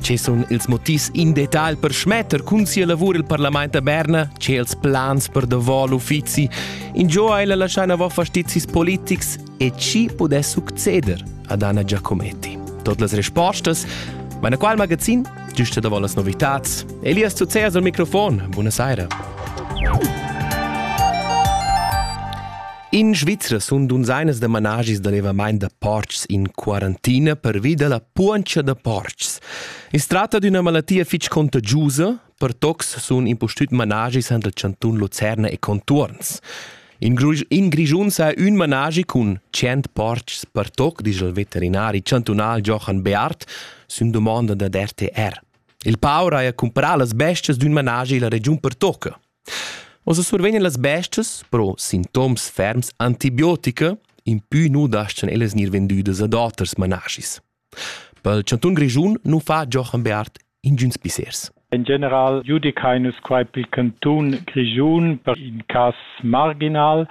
Che sun ils motivs in detal per schmetter cun sia lavur il parlament a Berna? Che els plans per davò l'uffizi? In gio ha ella lascià navò fastizis politics e chi pudess succeder ad Anna Giacometti? Tot las respostas Meine qual magazin? Giusta davò las novitats. Elias Zuzeas al microfon. Buonasera. In Svizra sun dunzainas da managis da levamaint da portgs in quarantina pervi da la puoncha da portgs. I's tratta d'üna malattia fich contagiusa, per tocs sun impustüt managis han dal Cantun Lucerna e contuorns. In, Gri in Grischun s'ha ün managi cun 100 portgs per toc, disch il veterinari chantunal Johan Beart sün dumonda dad RTR. Il paur haja cumprà las bestias d'ün managi illa regiun per toca. Oz survegnan las bestias però sintoms ferms antibiotica, impü nu daschan ellas gnir vendüdas ad oters manaschis. pel chantun Grischun nu fa Jochen Bearth ingüns pissers. In general giudicain nus quai pel cantun Grischun per in cas marginal,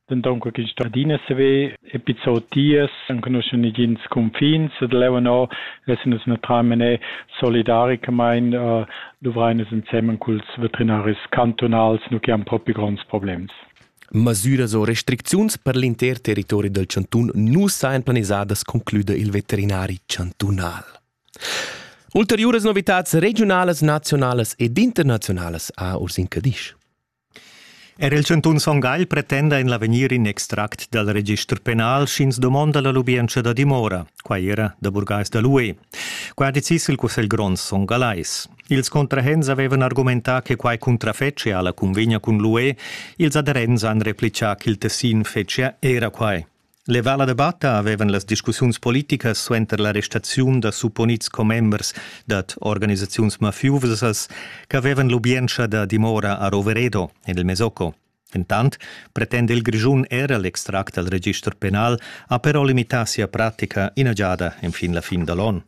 Denton co ch'ins sto adina saver epi zotiers, enconuschan negins cunfins e leu no essan nus naturalmein solidaricamein uh, duvrein nus ensemen culs veterinaris cantunals, nu che han propi gronds problems. Masüras o restricziuns per l'inter territori del chantun nu sajan planisadas, concluda il veterinari chantunal. Ulteriuras novitats regiunalas, nazionalas ed internazionalas a Urs in Cadisch. Er il chantun Son Gagl pretenda en l'avegnir in extract dal register penal, sch'ins domonda la lubientscha da dimora. Quai era da burgais da l'UE. Quai ha decis il Cussegl grond Son Gallais. Ils contrahents avevan argumentà che quai cuntrafetschia alla cunvegna cun l'UE. Ils aderents han replicà ch'il tessin fetschia era quai. Levà la debatta avevan las discussiuns politicas suenter l'arrestaziun da supponids commembers dad organisaziuns mafiusas ch'avevan lubientscha da dimora a Roveredo, en il Mesocco. Entant pretenda il Grischun era l'extract dal register penal ha però limità sia pratica ina giada enfin la fin da l'onn.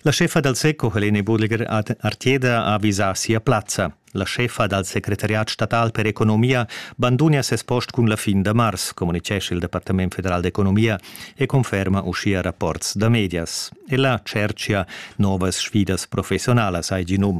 La scheffa dal seco Helene Burliger ad Arteda ha visà sia plazza. La scheffa dal secretariat statal per economia bandunia ses post cun la fin da mars, communitgescha il Departament federal d'economia e conferma uschia rapports da medias. Ella tschertgia novas sfidas professionalas, hai gì num.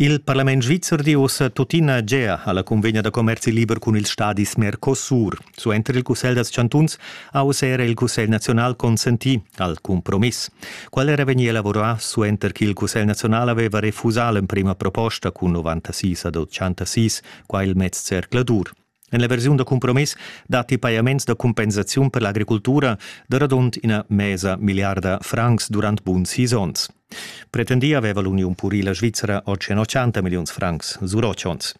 Il parlament svizzer di ussa tuttina Gea alla cunvegna da commerzi liber cun ils stadis Mercosur. Suenter il Cussegl dals chantuns ha uss era il Cussegl naziunal consentì al cumpromiss. Qual era vegnì elaborà suenter ch'il Cussegl naziunal aveva refusà l'emprima proposta cun 96 ad 86 qua il mez zercladur? En la versiun da cumpromiss datti pajaments da cumpensaziun per l'agricultura da radund ina mesa milliarda francs durant buns sis onns. Pretendì aveva l'uniun purila svizra oggi 80 milliuns francs sur otg onns.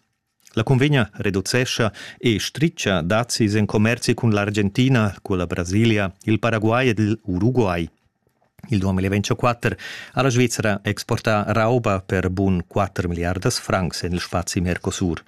La cunvegna reducescha e stritga dazis en commerzi cun l'Argentina, cun la Brasilia, il Paraguay ed il Uruguay. Il 2024 ha la Svizzera exportà rauba per bun 4 miliardas francs en il spazi Mercosur.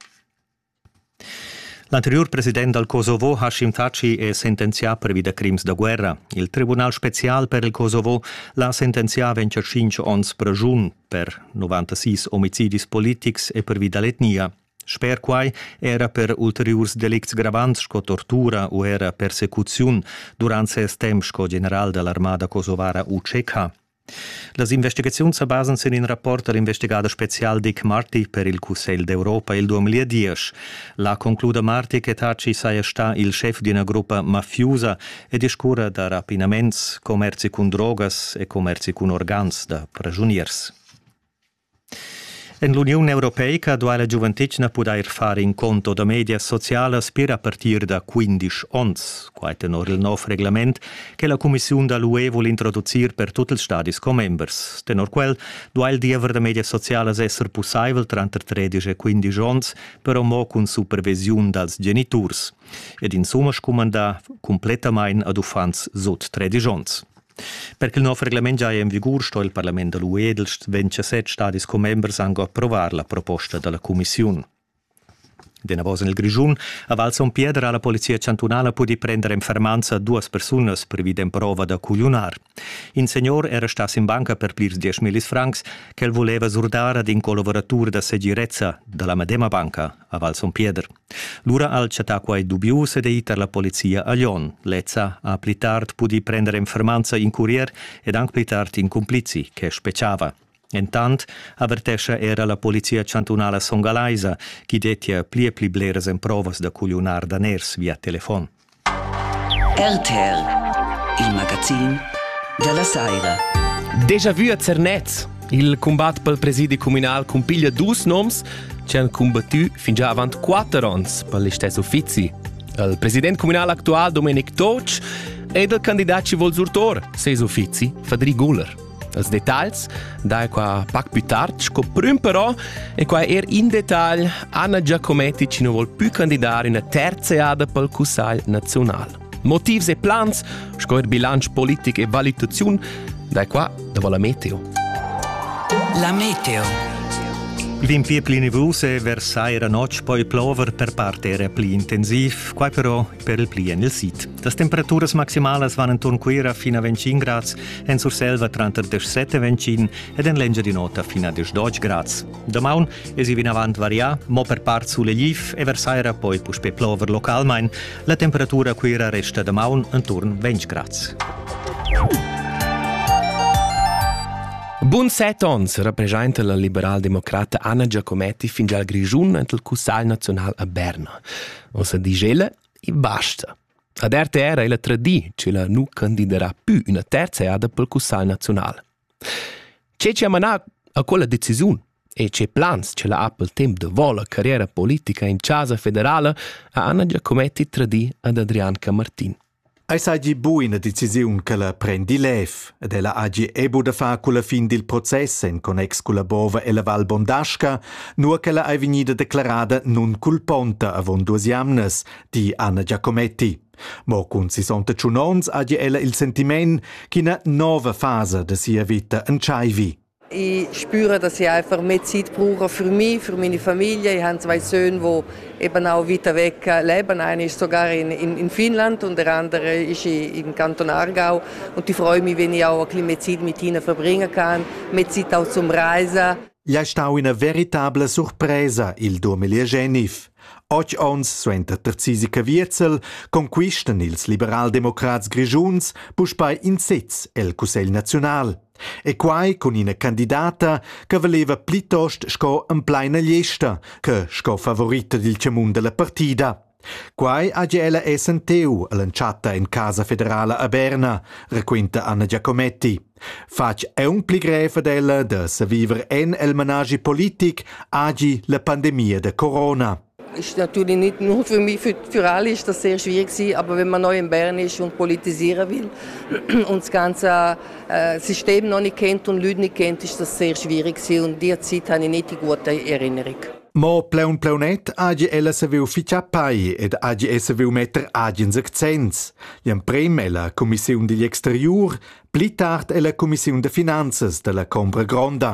L'anteriur president dal Kosovo Hashim Thaçi è sentenzià pervi da crims da guerra. Il tribunal spezial per il Kosovo l'ha sentenzià ventg a tschintg onns pregiun per 96 omicidis politics e pervi da l'etnia. Sper quai era per ulteriurs delicts gravants sco tortura u era persecuziun durant ses temp sco general da l'armada kosovara UCK. Las investigaziuns sa basan sin in rapport da l'investigader spezial Dick Marty per il Cussegl d'Europa il 2010. Là concluda Marty che Taci saja stà il schef d'ina gruppa mafiusa e discurra da rapinaments, commerzi cun drogas e commerzi cun organs da pragiuniers. En l'Uniun europeica duai la giuventetgna pudair far in conto da medias socialas pir a partir da quindisch onns. Quai tenor il nov reglament che la cumissiun da l'UE vul introducir per tut ils stadis commembers. Tenor quel duai il diever da medias socialas esser pussaivel tranter tredisch e quindisch onns, però mo cun supervisiun dals geniturs. Ed insumma scumandà cumplettamain ad uffants sut tredisch onns. Per che il nov reglament giaja en vigur sto il parlament da l'UE dals 27 stadis commembers anc approvar la proposta da la cumissiun. Denavos en il Grischun a Val Son Piedra ha la polizia chantunala pudì prender en fermanza duas persunas previd emprova da cugliunar. In senior era stà sin banca per plirs dieschmillis francs ch'el voleva surdar ad in collaboratur da segirezza da la medema banca, a Val Son Pieder. Lura ha el chattà quai dubius ed è ì tar la polizia a Lyon. Lezza ha pli tard pudì prender en fermanza in curier ed anc pli tard in cumplizi che spetgava. Entant avertescha era la polizia chantunala songalaisa ch'i dettia pli e pli bleras emprovas da cugliunar daners via telefon. RTR, il magazin dalla saira. Déjà vu a Zernez. Il combat pel presidi communal cumpiglia dus noms che han combattu fin già avant quatter ons per listess uffizi. Il president communal actual Domenic Toc ed il candidat ci vol surtor ses uffizi Fadri Guller. Els detagls dai qua pac più tard sco prüm però e qua er in dettagl Anna Giacometti ci nu vol più candidar üna terza eada pel Cussagl nazional. Motivs e plans sco er bilanc politic e valutaziun dai qua dopo la meteo. La meteo. L'impier pli nivus e vers saira notg poi plover per part era pli intensiv, quai però per il pli en il sid. Las temperaturas maximalas van enturn Cuira fin a 25 grads, en Surselva tranter 17 e 25 ed en l'Engiadin'Ota fin a 12 grads. Damaun es i vinavant varià, mo per part sulegliv e versaira poi puspè plover localmain. La temperatura a Cuira resta damaun enturn 20 grads. Bun set ons rappresenta la liberaldemocrata Anna Giacometti fin gial Grischun ent il Cussagl Naziunal a Berna. Ossa di ella I basta. Ad RTR ei la tradii che la nu candiderà più üna terza eada pel Cussagl naziunal. Ce che ha manà a quella decisiun e ce plans che la ha pel temp da vola carriera politica in Chasa federala ha Anna Giacometti tradii ad Adrian Camartin. Ei seigi bu ina decisiun che la prendi lev ed ella hagi ebu da far culla fin dil process en connex culla bova ella Val Bondasca, nua ch'ella ei vegnida declarada nunculponta avon duas jamnas, di Anna Giacometti. Mo cun sessanta tschun onns hagi ella il sentiment ch'ina nova fasa da sia veta entscheivi. Ich spüre, dass ich einfach mehr Zeit brauche für mich, für meine Familie. Ich habe zwei Söhne, die eben auch weiter weg leben. Einer ist sogar in, in, in Finnland und der andere ist im Kanton Aargau. Und ich freue mich, wenn ich auch ein bisschen mehr Zeit mit ihnen verbringen kann, mehr Zeit auch zum Reisen. Gliei stau ina veritabla surpresa il Domelier Genif. Otg onns suenter Tarzisi Cavierzel conquistan ils liberaldemocrats grischuns puspei in sez el Cussegl naziunal. E quai cun ina candidata che valeva plitost sco emplaina gliesta che sco favorita dil tgamun dalla partida. Quai haja ella essenteu all'entschatta en Casa federala a Berna, raquinta Anna Giacometti. Fatg aun pli grev ad ella da saviver en el managi politic agi la pandemia da corona. Ist natürlich nicht nur für mich, für, für alle ist das sehr schwierig gewesen, aber wenn man neu in Bern ist und politisieren will und das ganze äh, System noch nicht kennt und Leute nicht kennt, ist das sehr schwierig gewesen und diese Zeit habe ich nicht die gute Erinnerung. Mo pleun pleunet agi ella se viu ficia pai ed agi essa viu metter agin sech zens. L'emprem ella Commissiun digl exteriur, pli tard ella Commissiun de Finanzes della Combra Gronda.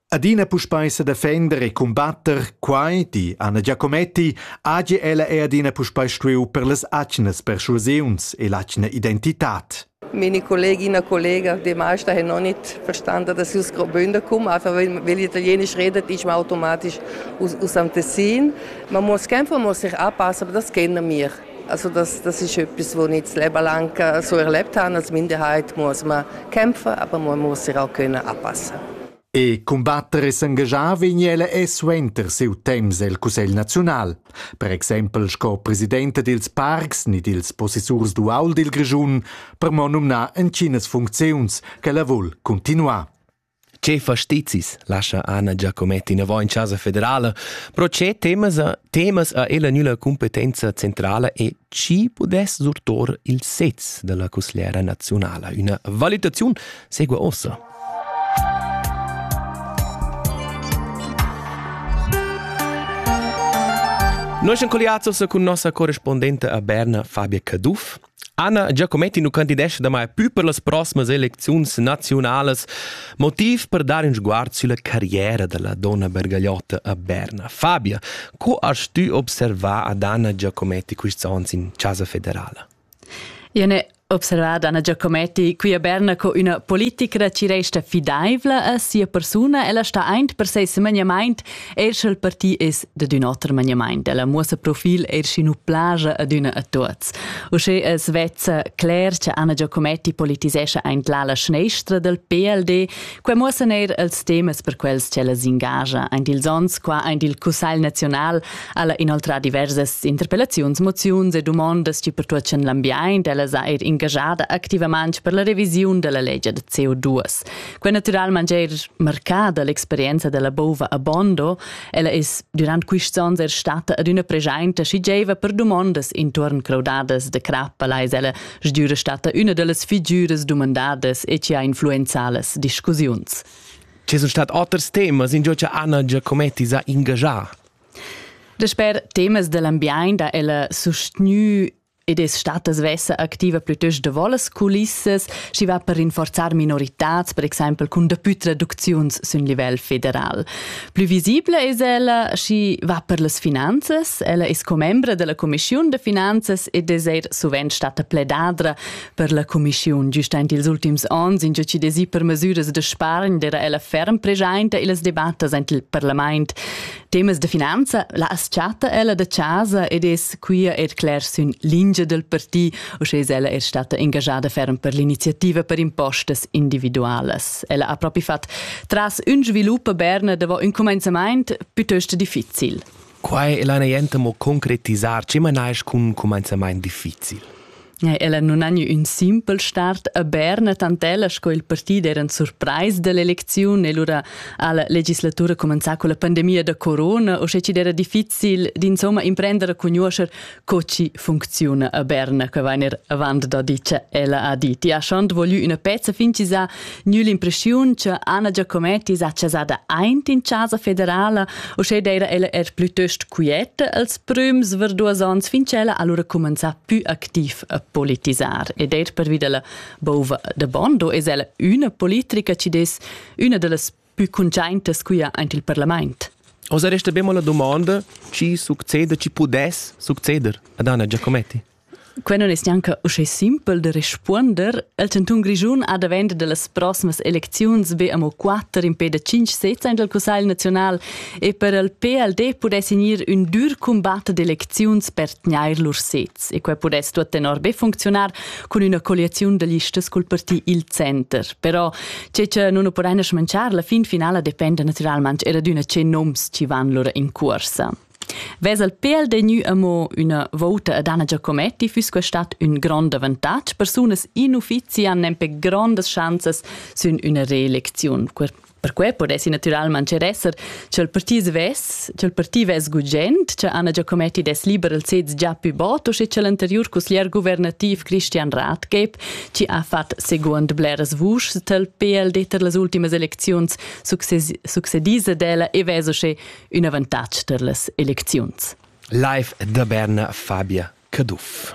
Adina puspei sedefender e cumbatter quai, di Anna Giacometti, hagi ella er adina puspei stuiu per las atgnas persuasiuns e l'atgna identitad. Meine Kolleginnen und Kollegen, die meisten haben noch nicht verstanden, dass sie aus Graubünden kommen. Einfach weil, weil Italienisch redet, ist man automatisch aus, aus dem Tessin. Man muss kämpfen, man muss sich anpassen, aber das kennen wir. Also das, das ist etwas, was ich das Leben lang so erlebt habe als Minderheit, muss man kämpfen, aber man muss sich auch können anpassen. E combattere s'engagiava in ella e suenter siu temps el Cussegl naziunal. Per exempel sco presidente dils parcs ni dils possessurs dual dil Grischun, per mo numnar entginas funcziuns che la vul continuar. Che fastizis lascha Anna Giacometti inavant in Chasa federala, però che temas, temas ha ella nüla cumpetenza centrala e chi pudess surtor il sez della cusgliera nazionala? Üna valutaziun segua ossa. Noi siamo collegati cun nostra corrispondente a Berna, Fabia Caduff. Anna Giacometti nu candidescha damai plü per las proximas elecziuns naziunalas, motiv per dar ün sguard sülla carriera da la donna bergagliotta a Berna. Fabia, co hast tü observà ad Anna Giacometti quists ons in Chasa Federala? Io n'he observà Anna Giacometti qui a Berna co üna politicra ci resta fidaivla a sia persuna. Ella sta aint per seis semegnamaint Eir sch'el parti es dad ün oter maniamaint, ella muossa profil eir sch'inu plaja adüna a tuots. Uschè es vezza cler cha Anna Giacometti politisescha aint l'ala schneistra dal PLD. Quai muossan eir els temas per quels ch'ella s'ingagia aint ils ons qua aint il Cussagl naziunal, ella inoltrà diversas interpellaziuns, moziuns e dumondas chi pertuochan l'ambiaint. Ella s'ha eir ingajada activamaing per la revisiun da la legia da CO2. Quei naturalment er marcada l'experienza della bova a Bondo. Ella es durant quists ons er stata ad üna pregiainta chi gieiva per dumondas intuorn craudadas de crappaleis. Ella sgüra stata üna dellas figüras dumandadas e ci ha influenzalas discussiuns. Ci sun stat oters temas in giò cha Anna Giacometti s'ha ingagià. Dasper temas dell'ambiaint ha ella sustgnü ed es stata svessa activa plütöst davo las culissas, schi va per rinforzar minoritats, per exaimpel cun dapü traducziuns sün livel federal. Plü visibla es ella, schi va per las finanzas. Ella es commembra della Commissiun da finanzas ed es eir suvent stata pledadra per la Commissiun. Giustaint ils ultims ons in già ci desi per masüras da spargn, d'era ella ferm preschainta illas debattas aint il parlament. Temas de finanza, la as-chatta ella da casa ed es quia ed cler sün lingia del parti, usche es ella er stata engajada ferm per l'iniziativa per impostas individualas. Ella ha propi fat tras ün svilup a Berna davo ün comenzamaint pütöst difficil. Quai è la niente mo concretisar, ce manais cun comenzamaint difficil? Ella non ha gnü ün simpel start a Berna, tantella sco il partid eran surprais dell'elecziun e lura ha la legislatura comenzà con la pandemia da corona, o sche ci era difficil d'insomma imprendere cun nuoscher co ci funcziuna a Berna, che vainer avant da dice ella ha dit. Ja schont voglü üna pezza fincisà Gnü l'impreschiun cha Anna Giacometti s'ha chasada aint in Chasa federala, uschè d'eira ella er plütöst quieta als prüms ver duos ons fin ch'ella ha lura cumanzà pü activ a politisar. Ed eir pervi da la bouva da Bondo es ella üna politrica chi'd es üna da las pü cuntschaintas qui aint il parlamaint. Oza resta bemo la dumonda chi succeda, chi pudess succeder ad Anna Giacometti? Quei non es gnanca uschè simpel da respunder. Il cantun Grischun ha davent dallas proximas elecziuns be amo quatter impè da tschinch sezs aint al Cussagl naziunal e per il PLD pudess gnir ün dür cumbat d'elecziuns per tgnair lur sezs e quai pudess tuot tenor be funcziunar cun üna colliaziun da listas cul parti Il Center. Però che cha nun nu podaina smanchar, la fin finala dependa natüralmaing era d'üna che noms chi van lura in cuorsa. Ves el pel degnü amo üna vouta ed Anna Giacometti füss que stat ün grond avantatg. Persunas in uffizi han nempe grondas schanzas sün üna reelecziun. Perque podessi natüralmaing er esser ch'el parti svess, ch'el parti vess gugent, cha Anna Giacometti dess liber il sez già pü bod o sche ch'el anteriur cusglier guvernativ Christian Rathgeb, chi ha fat seguond bleras vuschs tel pel d'eter las ultimas elecziuns, succedis ad ella e vess usche ün avantatg tar las elecziuns. Live da Berna, Fabia Caduff.